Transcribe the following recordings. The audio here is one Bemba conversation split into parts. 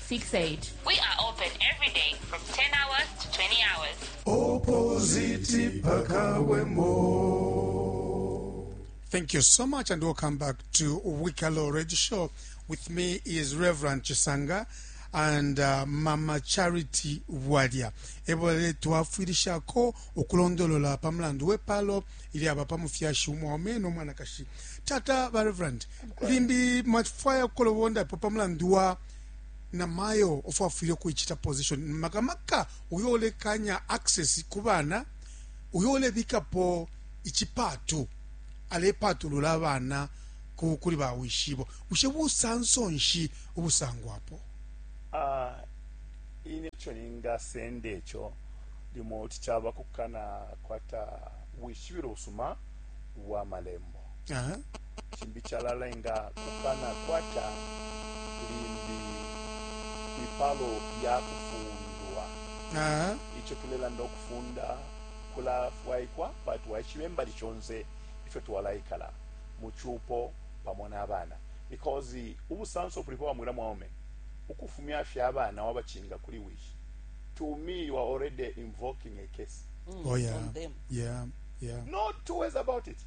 68. We are open every day from 10 hours to 20 hours. opposite pakawemo Thank you so much, and welcome back to Wikalo Radio Show. With me is Reverend Chisanga and uh, Mama Charity Wadia. Ebole twafwirishako ukulondolola pa mulandu w'epaalo ilyaba pa mufyashi umwaume n'omwanakashi. Tata ba Reverend, limbi mwafwaya ukulobondapo pa mulandu wa na mayo of afwile ukuichita position maka maka uyo ulekanya access ku bana uyo ulebikapo ichipatu alepatulula abana ku kuli ba wishibo bushe busanso nshi ubusangwapo ah uh, ine cho ninga sende cho limo tichaba kukana kwata wishibiro usuma wa malembo Aha. chimbi chalalenga kukana kwata limbi ipalo ya kufundwa Aha. icho tulelanda ukufunda kulafwaikwa pati waishibe mbali shonse ifyo twalaikala mu chupo pamo n'abana because ubusanso bulipo bamwila mwaume ukufumya fye abana wabachinga kuli wishi to me you are already invoking a case Mm, Oh yeah. on them. Yeah. Yeah. no two ways about it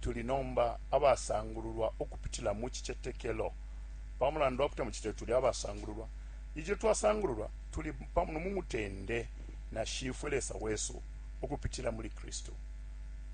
tuli nomba abasangululwa ukupitila mu cicetekelo. Pa mulandu wa kuti na mu cicetekelo tuli abasangululwa, ilyo twasangululwa, tuli pamo mu mutende na Shifwe Lesa wesu ukupitila muli Kristu.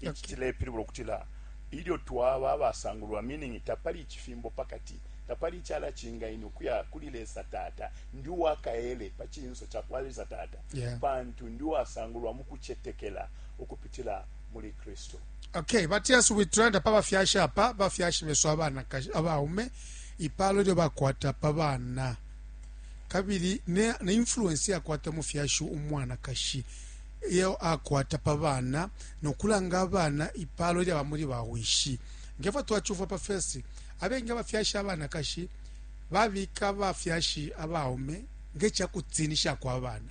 Ici okay. cilepilibula ukutila ilyo twaba abasangululwa, meaning tapali icifimbo pa kati, tapali icala cingaini ukuya kuli Lesa Tata, ndi uwa kaele pa cinso ca kwa Lesa Tata, yeah. pantu ndi uwasangulwa mu kucetekela ukupitila muli Kristu. Okay, but yes, we tulanda pa bafyashi apa bafyashi besu abanakashi abaume ipalo lyo bakwata pa bana kabili ne, ne influence yakwata mufyashi umwanakashi iyo akwata pa bana nokulanga abana ipalo lyaba muli bawishi ngefo twachuva pa fesi abengi abafyashi abanakashi babika abafyashi abaume ngechakutinisha kwa bana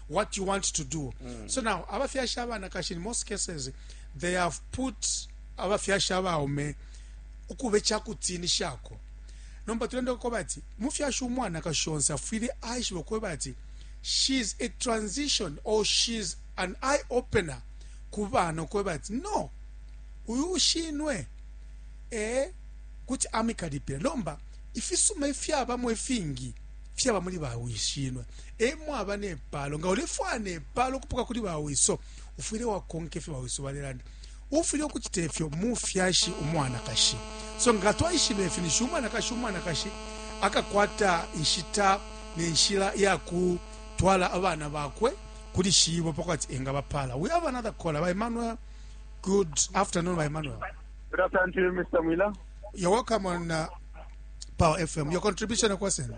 what you want to do mm. so now abafyashi abanakashi in most cases they have put abafyashi abaume ukuba ekyakutiinishako nomba tulenda kukoba ati mufyashi umwanakashi onse afwile aishiba okweba ati she's a transition or she's an eye opener ku bana okweba ati no uyu ushinwe e kuti amikalipira lomba ifisuma ifyabamo ifingi fyaba muli bawishinwe e mwaba ne paalo. Nga ulefwaya ne paalo ukupoka kuli bawiso, ufwile wakonka ifyo bawiso balelanda. Uufwile ukucita ifyo, mufyashi umwanakashi. So nga twaishiba ifi, ninshi umwanakashi umwanakashi akakwata inshita ne nshila ya kutwala abana bakwe kuli shibo pa kwati engabapaala. We have another caller. Ba Emmanuel, good afternoon, ba Emmanuel. Good afternoon to you, Mr. Mwila. You're welcome on uh, Power FM. Your contribution, Akwasena.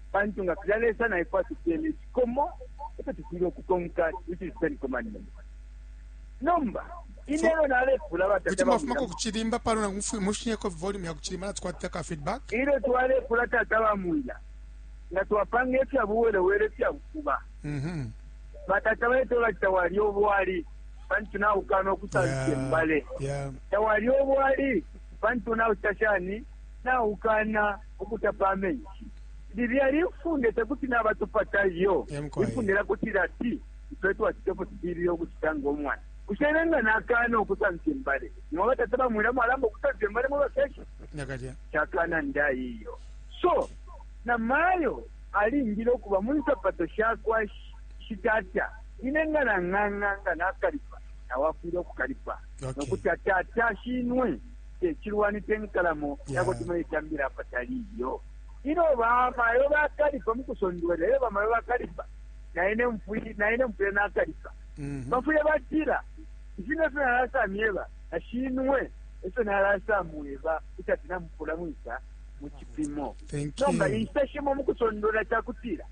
Pantu nga filya Lesa na ifwe atupele ifikomo ifyo tufwile ukukonka, which is ten commandments. Nomba, ine elyo nalepula batata bamwina. Kuti mwafumako kuchilimba pano na mfuyu mushinyeko volume ya kuchilimba na tukwatita ka feedback. Ilyo twalepula tata bamwina, nga twapanga ifya buwelewele fya bufuba. Mhm. Batata baito bachita wali obwali, pantu na ukano kusansi mbale. Yeah. Tawali obwali, pantu na utashani, na ukana. ukutapa amenshi. Lilya lifunde tekuti nabatupata iyo. Ifunde lya kutila ati ifwe twacita ifyo tufwile ukucita ngo mwana. Bushe ine nga nakana ukusamfya imbale, nimwe batata bamwila mwalamba ukusamfya imbale mwe bafyashi? Nakalya. Cakana ndai iyo. So, na mayo alingile ukuba mu nsapato sha kwa shitata. Ine nga nang'ang'a nga nakalipa, nawe afwile ukukalipa. Okay. Nokuti atata shinwe. te cilwani, te nkalamo ya kuti muletambila apatali iyo. Ilyo bamayo bakalipa mu kusondwelela, ilyo bamayo bakalipa, na ine mfwile nakalipa. Mhm. Bafwile batila, Ifi ne fyo nalasa myeba, na shinwe e fyo nalasa mweba, kuti ati namupula mwisa mu cipimo. Nomba inshita shimo mu kusondwelela ca kutila,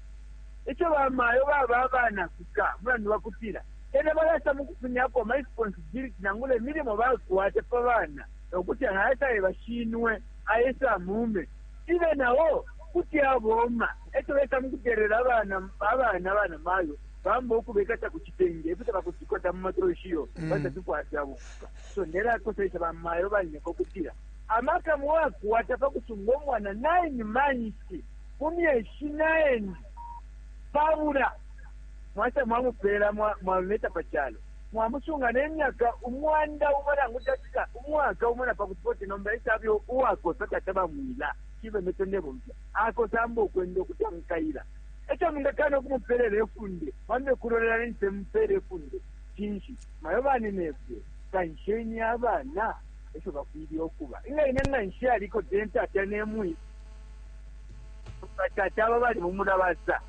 ico bamayo baba abanakuka mulandu wa kutila Elyo balasa mukufumyako ama responsibility nangula imilimo bakwata pa bana nokuti aha esaeba shinwe a ese amuume cibe nao kuti abooma. Eco besa mukutelela abana abana banamayo bamba ukubekata ku citenge efyo tabakuti kota muma troshi iyo pantu tatufwaya fyabupuka. So ndelakoselesha bamayo banyoko ukutila amaka mwakwata pakusunga umwana nine manshi, mu myeshi nine, pabula. Mwata mwamupela mwaluleta pa calo. Mwamusunga ne myaka umwanda umo nangu cafika umwaka umo na pakuti 40 nomba ese abe uwakosa tata ba mwila shibe meso ndebomfya akosamba ukwenda ukuti amukaila. Eco mwingakana ukumupelela ifunde mwambe ukulolela ninshi mpeela ifunde cinshi? Mayo baninefwe kansheni abana efyo bafwile ukuba. Inga ine nga nshaliko tee tata ne mwi? Batata aba bali mu mulabasa.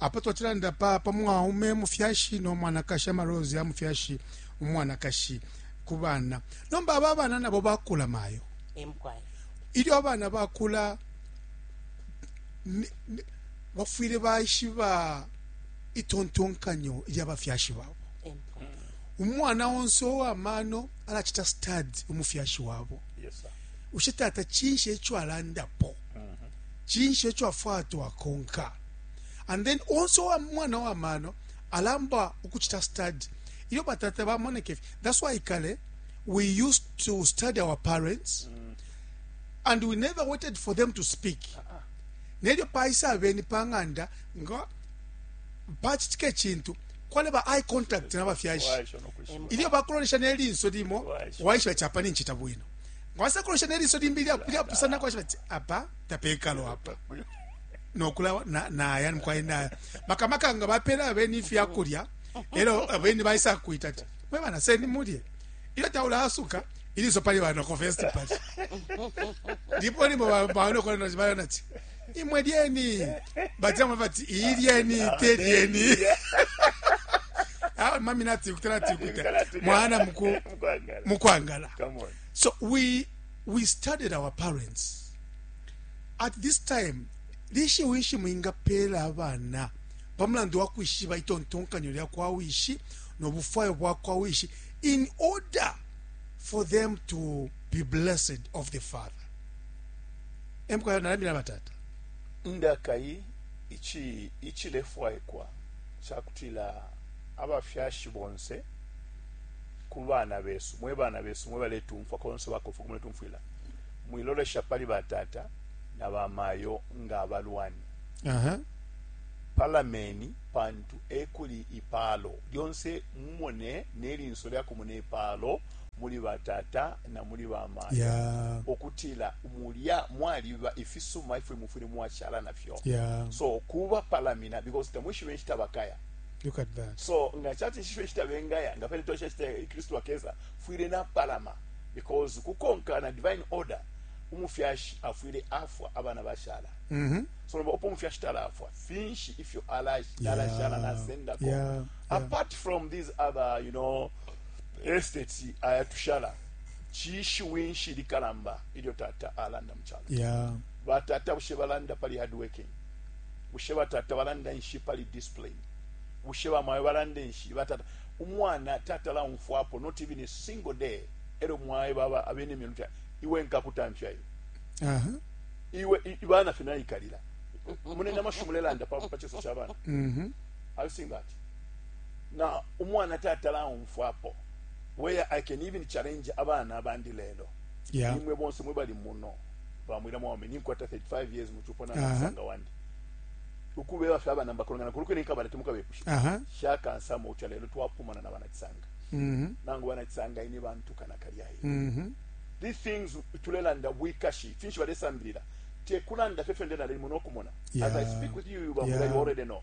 Apa twacilanda pa pa mwaume mufyashi no mwanakashi, ama roles ya mufyashi umwanakashi ku bana. Nomba aba abana nabo bakula mayo. Eh, mukwai. Ilyo abana bakula ni- ni- bafwile baishiba itontonkanyo lya bafyashi babo. Eh, mukwai. Umwana onse owamano alacita study umufyashi wabo. Yes, sir. Ushe tata cinshi eco alandapo? cinshi eco afwaya twakonka and then onse uwa mwana wa mano alamba ukucita study ilyo batata bamoneka ifi that's why kale we used to study our parents and we never waited for them to speak nelyo paisa abeni pa ng'anda nga pacitika icintu kwaleba eye contact n'abafyashi Waisha no kwishiba. ilyo bakulonesha nelinso limo Waisha. waishiba capa nincita bwino ngawasa kulosha neliso limbi lyapusanako ashiba ti apa tapekalo apa nokula naya mukwaye naya makamaka nga bapela abeni ifyakulya elo abeni baisa kuita ti mwe bana seni mulye ilyo taulaasuka iliso pali banoko festi pali ndipo limo banokolana ti imwe lyeni bajama bati iyi lyeni te lyeni awe mami natikuta natikuta mwana muku Mkwangala. mukwangala Come on. so we we studied our parents at this time lishi wishi mwingapeela abana pamulandu wa kwishiba itontonkanyo lya kwa wishi nobufwayo bwa kwa wishi in order for them to be blessed of the father e mukwai nalandile na batata. Ndakai icilefwaikwa ca kutila abafyashi bonse ku bana besu, mwe bana besu mwe baletumfwa konse bakofwe uko muletumfwila, mwilolesha pali batata na bamayo nga abalwani. Palameni pantu e kuli ipaalo lyonse, mumone ne linso lya kumona ipaalo. muli batata na muli bamayo yeah. okutila mulya mwaliba ifisuma ifyo mufwile mwashala nafyo yeah. so kuba palamina because tamwishibe nshita bakaya Look at that. so nga chati nshishwe nshita bengaya nga pene tosha nshita kristu akeza fwile napalama because kukonka na divine order umufyashi afwile afwa abana bashala mm -hmm. so nomba opo umufyashi talafwa finshi ifyo alashala yeah. nasendako yeah. apart yeah. from these other you know estates aya tushala chishiwi nshi likalamba ilyo tata alanda mu chalo yeah. batata bushe balanda pali hard working bushe batata balanda nshi pali discipline bushe bamayo balanda nshi batata umwana tata laumfwapo not even a single day elo mwaye baba abene myeluta iwe nkakutamfya iwe uh -huh. iwe ibana fina ikalila mune namashumulelanda pa pa chiso chabana mhm mm -hmm. i've seen that Nga umwana tatala umfwapo where I can even challenge abana abandi lelo yeah. Imwe bonse mwe bali muno bamwira mwaume ninkwata 35 years muchupo na musanga wandi ukubeba fye abana mbakolongana kuluke ninkabala timukabepusha uh -huh. shaka nsamo ucha lelo twapumana na bana kisanga mm -hmm. nangu bana kisanga ini bantu kana kalya hii mm -hmm. these things tulelanda wikashi finshi balesambirira tekulanda fye fende nalimo nokumona yeah. as I speak with you bamwira yeah. you already know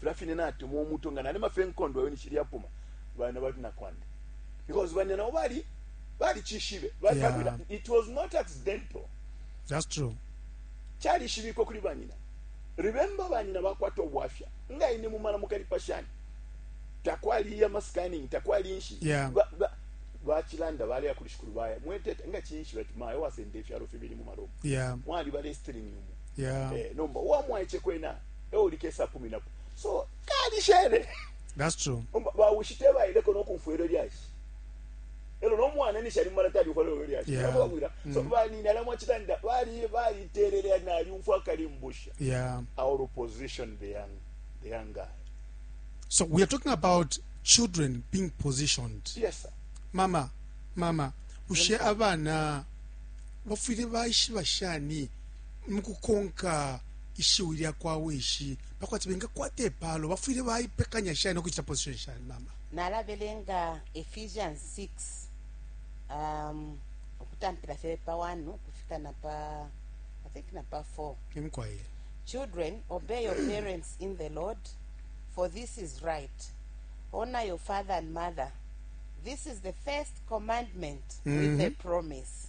Fila fine natemwa umuto nga nalima fe nkondo yo nishili yapuma. Bana bali na kwanda. Because bana nabo bali bali chishibe. Bali yeah. kabila. It was not accidental. That's true. Chali shibiko kuli banyina. Remember banyina bakwata obwafya. Nga ine mumala mukali pashani. Takwali ya maskani, takwali inshi. Yeah. Ba, ba, bachilanda bale ya kulishikulu baya. Mwetete, nga chinshi bati maya wasende ifyaro fibili mumalomu. Yeah. Mwali bale string yumu. Yeah. Eh, nomba, uwa mwaeche kwena. ewo likesa kuminapo so kalishele that's true ba ushite ba ile kono kumfwele lyashi elo no mwana ni shali mara tali kwa lolo lyashi yeah. kwa kwira so mm. ba ni nala mwa chitanda bali bali terere na ali umfwa kali mbusha yeah our opposition the young the young guy so we are talking about children being positioned yes sir mama mama ushe abana bafwire baishiba shani mukukonka ishiwi lya kwa wishi pa kwati bengakwata ipaalo bafwile baipekanya shani no kucita position shani mama nalabelenga ephesians 6 um, ukutampila fye pa 1 ukufika na pa i think na pa 4 imkwaye children obey your parents in the lord for this is right honor your father and mother this is the first commandment with a promise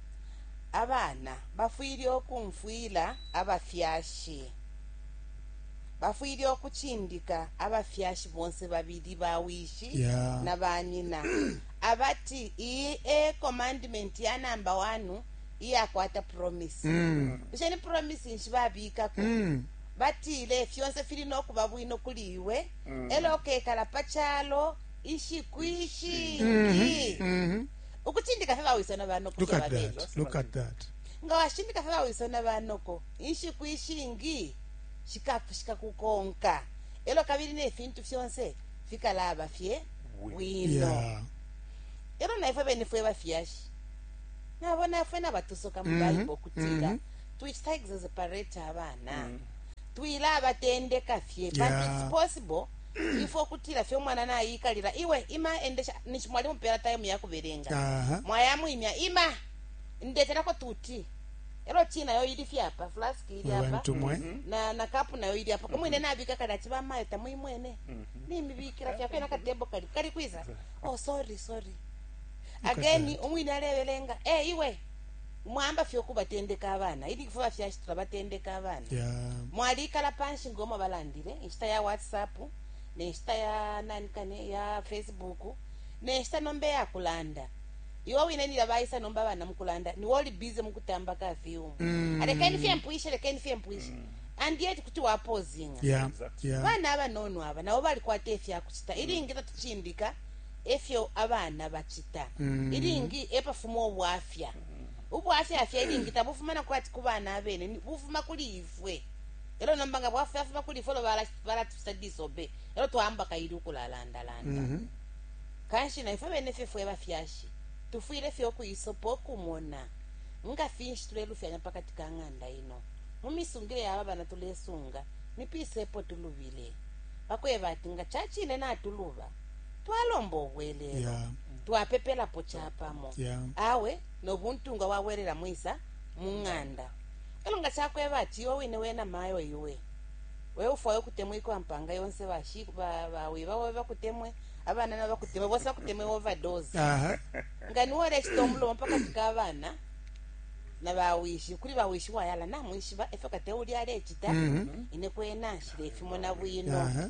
Abana bafwile ukumfwila abafyashi. Bafwile ukucindika abafyashi bonse babili, bawishi yeah. na banyina abati iyi e commandment ya namba wanu iyakwata promise mm. bushe ni promise nshi babikako mm. batile fyonse fili no kuba bwino kuli iwe mm. elo ukekala pa calo ishiku ishingi mm -hmm. mm -hmm. ukucindika fye bawiso na banoko look at that look at that nga washindika fye bawiso na banoko inshiku ishingi shikafushika kukonka elo kabili ne fintu fyonse fikalaba fye bwino yeah. elo naifwe bene fwe bafyashi nabo nafwe nabatusoka mu mm -hmm. bible okutila mm -hmm. tuicita exasperate abana mm -hmm. twila abatendeka fye yeah. but it's possible ifwe ukutila fye umwana naiikalila iwe ima endesha ninshi mwali mupela taimu ya kubelenga Aha. mwayamwimya ima ndetelako tuti elo ti nayo ili fye apa flask ili apa abantu mwe na na kapu nayo ili apa kumwine nabika kali ati bamayo tamuimwene nimibikila fyakwe na katembo kali kali kwiza oh sorry sorry ageni umwine alebelenga eh iwe mwayamba fye ukubatendeka abana ilingi fwe bafyashi tulabatendeka abana yeah. mwalikala panshi ngoma balandile inshita ya whatsapp nenshita ya nanikane ya facebook nenshita nomba eyakulanda iwe wine nila baisa nomba abana mukulanda niwe oli bize mukutamba ka fiumu mm. alekeni fye mpwishe lekeni fye mpwishe mm and yet kuti wapozinga yeah, yeah. bana abanono aba nabo balikwata efyakucita ilingi tatucindika e fyo abana bacita ilingi e pafuma ubwafya. Ubwafya fye ilingi tabufuma na kwati ku bana abene, ni, bufuma kuli ifwe. E lyo nomba nga bwafyafuma kuli ifwe, e lyo bala- balatucita disobey, e lyo twaamba kaili ukulalandalanda. Kanshi na ifwe bene fye fwe bafyashi tufwile fye ukuisopa ukumona nga finshi tulelufyanya pa kati ka ng'anda ino. Mu misungile ya aba bana tulesunga, ni pisa epo tulubile? Pa kweba ati nga ca cine natuluba, twalomba ubwelelo Yeah. twapepelapo capamo Yeah. awe nobuntungwa bwabwelela mwisa mu ng'anda elo nga cakweba ati iwe wine wena mayo iwe we ufwayo ukutemwikwa mpanga yonse bashi- ba- bawiba bobe bakutemwe abana nabo bakutemwe bonse bakutemwe overdose aha nga niwe olecita omulomo pakati k'abaana na bawishi kuli bawishi wayala namwishiba efyo kate uli alecita Mhm. ine kwena nshile efimona bwino aha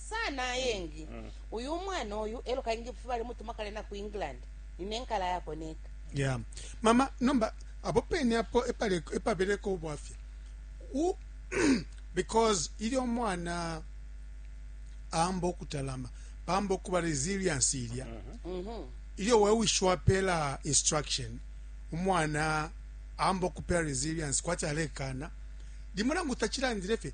sana ayengi uyu umwana uyu elo kaingi fufe balimutuma kale na ku england nine nkala yako neka yeah. mama nomba apo pene apo epale- epabeleko ubwafya U- because ili omwana amba okutalama pamba okuba resilience ilya ilyo wewishi wapeela instruction umwana amba okupeela resilience kwati alekana limo nangu tachilandile fye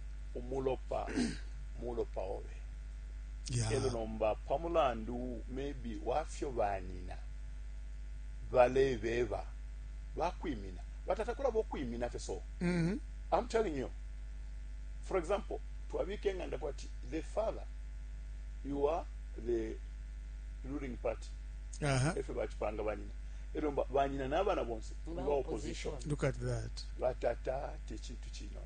umulopa mulopa obe yeah. elo nomba pa mulandu maybe wafyo banina balebeba bakwimina batata kulaba okwimina fye so mm -hmm. i'm telling you for example twabika enganda kwati the father you are the ruling party uh -huh. efyo bakipanga banyina ero banyina n'abaana bonse nga opposition look at that batata tekintu kinono